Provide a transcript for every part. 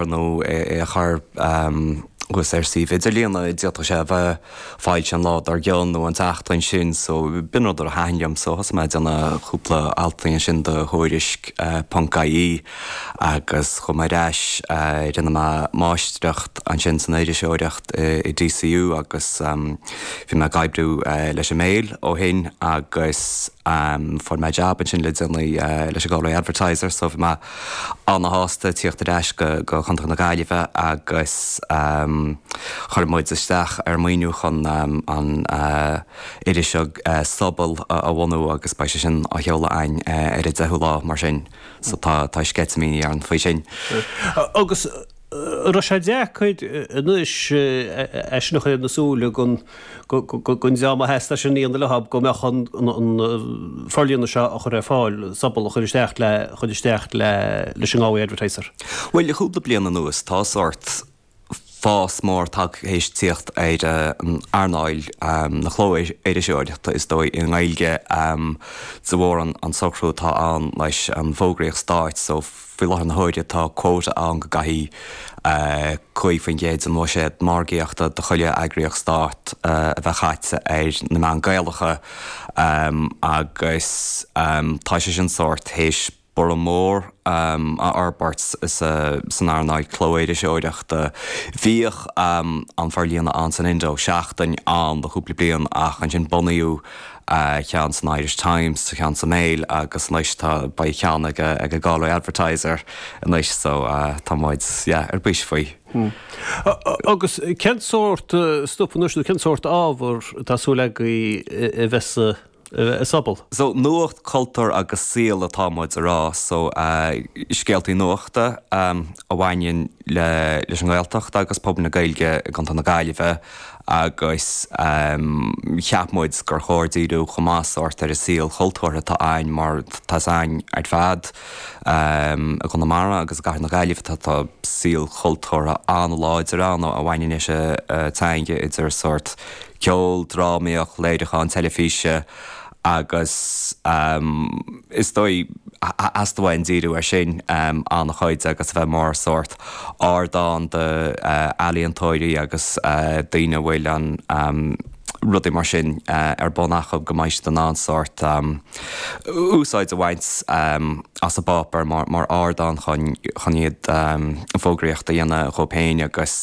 ar nó é a chur thuas ar suíomh idirlíon a d'fhéadfadh sé a bheith foilsithe an lá dar gcionn nó an tseachtain sin so b'in rud a thaithin liom so thosaigh mé ag déanamh cúpla altaí ansin do Thuairisc ponc ie agus chuaigh mé ar ais rinne mé máistreacht ansin san iriseoireacht i DCU agus bhí mé ag oibriú leis an Mail ó shin agus fuair mé jab ansin le déanaí leis an Galway Advertiser so bhí mé Ana-shásta tíocht ar ais go Contae na Gaillimhe agus chuir muid isteach ar maoiniú chun an iris Sobal a bhunú agus beidh sé sin á sheoladh againn ar an 10ú lá mar sin so tá sceitimíní orainn faoi sin. Agus raibh sé deacair anois é sin a chur ar na súile don dream a theastaigh é sin a dhéanamh leo go mbeadh an forlíonadh seo a chur ar fáil, Sobal a chur isteach le chur isteach leis an nGalway Advertiser. Bhuel, le cúpla bliain anuas tá sórt fás mór tagtha théis tíocht ar an earnáil na cló-iriseoireachta is dóigh i nGaeilge de bharr an socrú atá ann leis an bhfógraíocht stáit so, Faoi láthair na huaire tá quota ann go gcaithfidh 5% den bhuiséad margaíochta do chuile eagraíocht stáit a bheith caite ar na meáin Gaelacha agus tá sé sin sórt théis borradh mór a fhorbairt san earnáil clóiriseoireachta. Bhíodh an forlíonadh ann san Indo, Seachtain, ann le cúpla bliain ach ansin bunaíodh. ceann san Irish Times, ceann sa Mail agus anois tá, beidh ceann ag an Galway Advertiser anois so tá muid, yeah, ar bís faoi. Hmm. Agus cén sórt stuif anois nó cén sórt ábhar atá súil agaibh a bheith sa Sobal? So nuacht, cultúr agus saol atá muid a rá so scéaltaí nuachta a bhaineanns leis an nGaeltacht agus pobal na Gaeilge i gContae na Gaillimhe. agus cheap muid gur chóir díriú chomh maith sórt ar an saol cultúrtha atá a'ainn mar tá a fhios a'ainn ar fad i gConamara agus i gcathair na Gaillimhe tá tá saol cultúrtha an-láidir ann a bhaineanns leis an teanga idir sórt ceol, drámaíocht, léiriúcháin teilifíse. agus is dóigh theastaigh uainn díriú air sin an-chuid agus a bheith mar sórt ardán do ealaíontóirí agus daoine a bhfuil an rudaí mar sin ar bun acu go mbeidh siad in ann sórt úsáid a bhaint as an bpáipéar mar ardán chun iad fógraíocht a dhéanamh dhóibh féin agus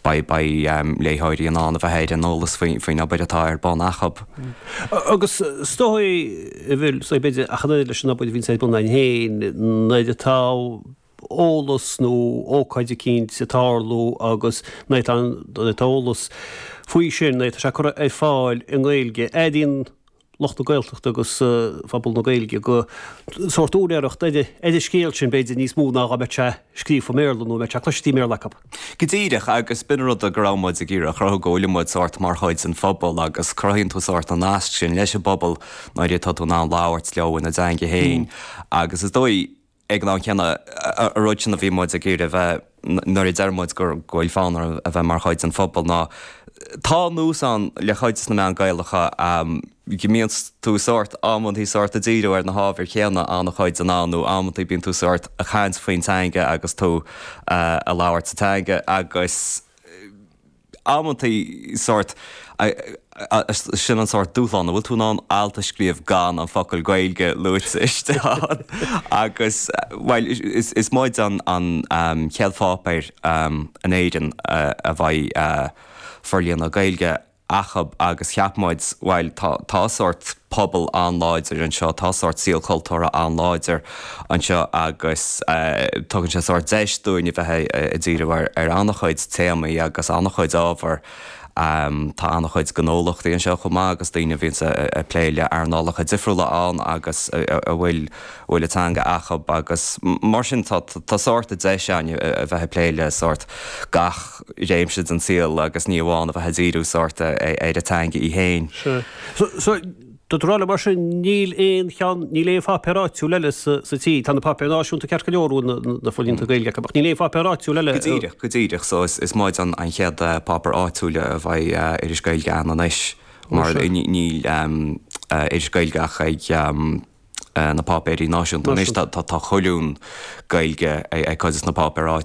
beidh léitheoirí in ann a bheith ar an eolas faoin obair atá ar bun acub. Agus is dóigh go bhfuil a fhios, b'fhéidir, ach an oiread leis an obair a bhíonns ar bun againn féin, nuair atá eolas nó ócáid eicínt ag tarlú agus nuair atá an, nuair atá eolas faoi sin, nuair atá sé curtha ar fáil i nGaeilge, airíonn lucht na Gaeltachta agus pobal na Gaeilge go sórt úinéireacht ar an scéal sin, b'fhéidir, níos mó ná dá mbeadh sé scríofa i mBéarla nó dá mbeadh sé cloiste i mBéarla acu. Go díreach, agus b'in an rud go raibh muid ag iarraidh a chruthú, go bhfuil muid sórt mar chuid den phobal agus cruthaíonn tú sórt an nasc sin leis an bpobal nuair atá tú in ann labhairt leo ina dteanga féin agus is dóigh, Ag an am céanna, an rud sin, bhí muid ag iarraidh a bheith nuair a deir muid go bhfuil fonn orainn a bheith mar chuid den phobal ná tá nós ann le cuid de na meáin Gaelacha go mbíonn tú sórt, amantaí sórt ag díriú ar na hábhair chéanna an-chuid den am nó amantaí bíonn tú sórt ag caint faoin teanga agus tú ag labhairt sa teanga agus amantaí sórt. Sin an sórt dúshlán a bhfuil tú in ann alt a scríobh gan an focal Gaeilge luaite istigh ann agus, bhuel, is muide an an chéad pháipéar in Éirinn a bheidh forlíonadh Gaeilge acub agus cheap muid, bhuel, tá sórt pobal an-láidir anseo, tá sórt saol cultúrtha an-láidir. anseo agus tugann sé sórt deis dúinn a bheith ag díriú ar an-chuid téamaí agus an-chuid ábhar. Tá an-chuid gnólachtaí anseo chomh maith agus daoine a bhíonns ag plé le earnálacha difriúla ann agus a bhfuil bhfuil an teanga acub agus mar sin tá sórt deis againn a bheith ag plé le sórt gach réimse den saol agus ní amháin a bheith ag díriú sórt ar an teanga í fhéin. Sea. So, Dúirt tú leis mar sin níl aon cheann, níl aon pháipéar áitiúil eile sa tír, tá na páipéir náisiúnta ceart go leor, na forlíonta Gaeilge acu, ach níl aon pháipéar áitiúil eile. Go díreach, go díreach, so is muid an chéad páipéar áitiúil a bheidh iris Gaeilge againn anois mar níl iris Gaeilge ach ag na páipéirí náisiúnta anois, tá colún Gaeilge ag cuid de na páipéir áitiúla.